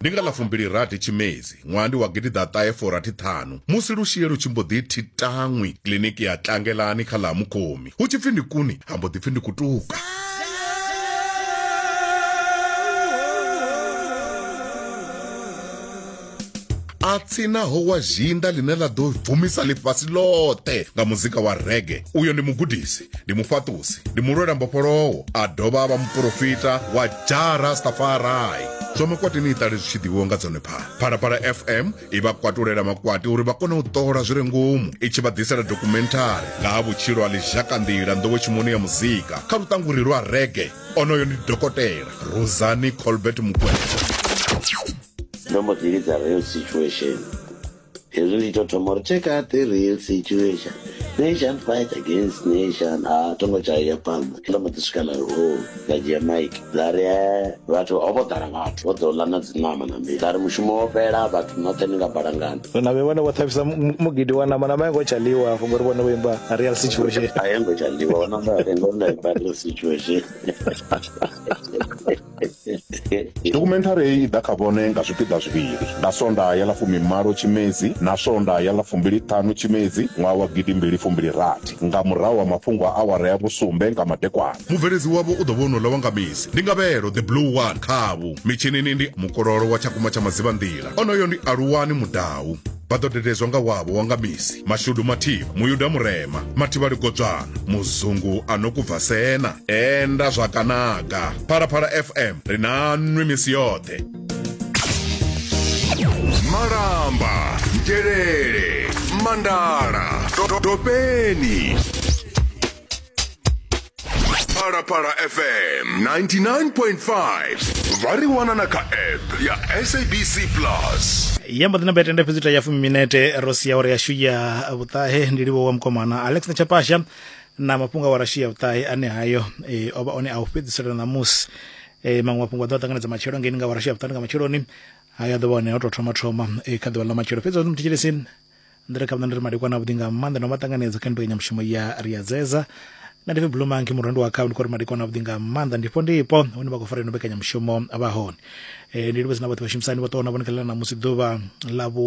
ndi nga ḽa fumbili rathi tshimedzi ṅwaha ndi wa gidiḓaṱahe forathi ṱhanu musi lushie lu tshi mbo ḓi thitaṅwi kiḽiniki ya tlangelani kha ḽa mukhomi hu tshi pfi ndi kuni ha mbo ḓi pfi ndi kutuka a tsinaho wa zhinda ḽine ḽa ḓo bvumisa ḽifhasi ḽoṱhe nga muzika wa rege uyo ndi mugudisi ndi mufhaṱusi ndi mulwela mbofholowo a dovha a vha muporofita wa jara stafarai zwa makwati ni iṱale zwi tshi ḓivhiwa nga dzone phala phalaphala fm i vha kwatulela makwati uri vha kone u ṱola zwi re ngomu i tshi vha ḓisela dokumenthari nga ha vhutshilo ha ḽizhakanḓila nḓowetshimoni ya muzika kha luṱanguri lwa rege onoyo ndi dokotela rosani colbert mukwevho ndo mbo ḓi lidza real situation hezwi ndi to thoma uri check out the real situation nation fight against nation a thongo dzhaya phanḓa ndo mbo ḓi swika lari o nda dzhia mike nda ri eh, vhathu ho vho ḓala vhathu vho ḓo ḽa na dziṋama na mii nda ri mushumo wo fhela vhathu noṱhe ni nga balangana na vhe vhone vho ṱhavhisa mu- mugidi wa nama nama yango tsha ḽiwa hafho ngori vhone vho imba real situation a yo ngo tsha ḽiwa ona mba rengo nda i badela situation Dokhumenthari heyi i ḓa kha vhone nga zwipiḓa zwivhili, nga Sondaha ya ḽa fumimalo Tshimedzi na Sondaha ya ḽa fumbili-ṱhanu Tshimedzi ṅwaha wa gidi mbili fumbili rathi nga murahu ha mafhungo a awara ya vhusumbe nga madekwana. Mubveledzi wavho u ḓo vha wonouḽa wa nga misi, ndi Ngavhelo the Blue One. Khavhu mitshinini ndi Mukololo wa Tshakumba tsha Madzivhanḓila, onoyo ndi Aluwani Mudau. Vha ḓo dededzwa nga wavho wa nga misi, Mashudu Mathivha, Muyuda Murema, Mathivha Ligodzwana, Muzungu a no ku Bvasena. tenda zwa kanaga phalaphala fm ri na nwi misi yoṱhe malamba ngelele mandala topeni phalaphala fm 99.5 vha ri wana na kha app ya sabc plus ya mbo ḓina betende fhedzi ita ya fumi minete ro sia uri yashu ya vhuṱahe ndi livho wa mukomana alex na chapasha na mafhungo a wa rashiya vhuṱahe ane hayo e, o vha one a u fhedzisela ṋamusi e, maṅwe mafhungo a ḓo a ṱanganedza matshelo ngeni nga wa rashiya vhuṱahe nga matsheloni hayo a ḓo vha one o tou thoma thoma e, kha ḓuvha ḽa matshelo fhedzi wani muthetshelesi ndi re kha vhona ndi ri madekwana avhuḓi nga maanḓa no vha ṱanganedza kha mbekanyamushumo ya ri a dzedza na ndife blue monkey murendo wa khao ndi khou ri madekwana avhuḓi nga maanḓa ndifho ndipo hune vha khou fara ino mbekanyamushumo vha hone e, ndi livhedzi na vhoṱhe vhashumisani vho ṱoho na vhone kha ḽa ṋamusi ḓuvha ḽa vhu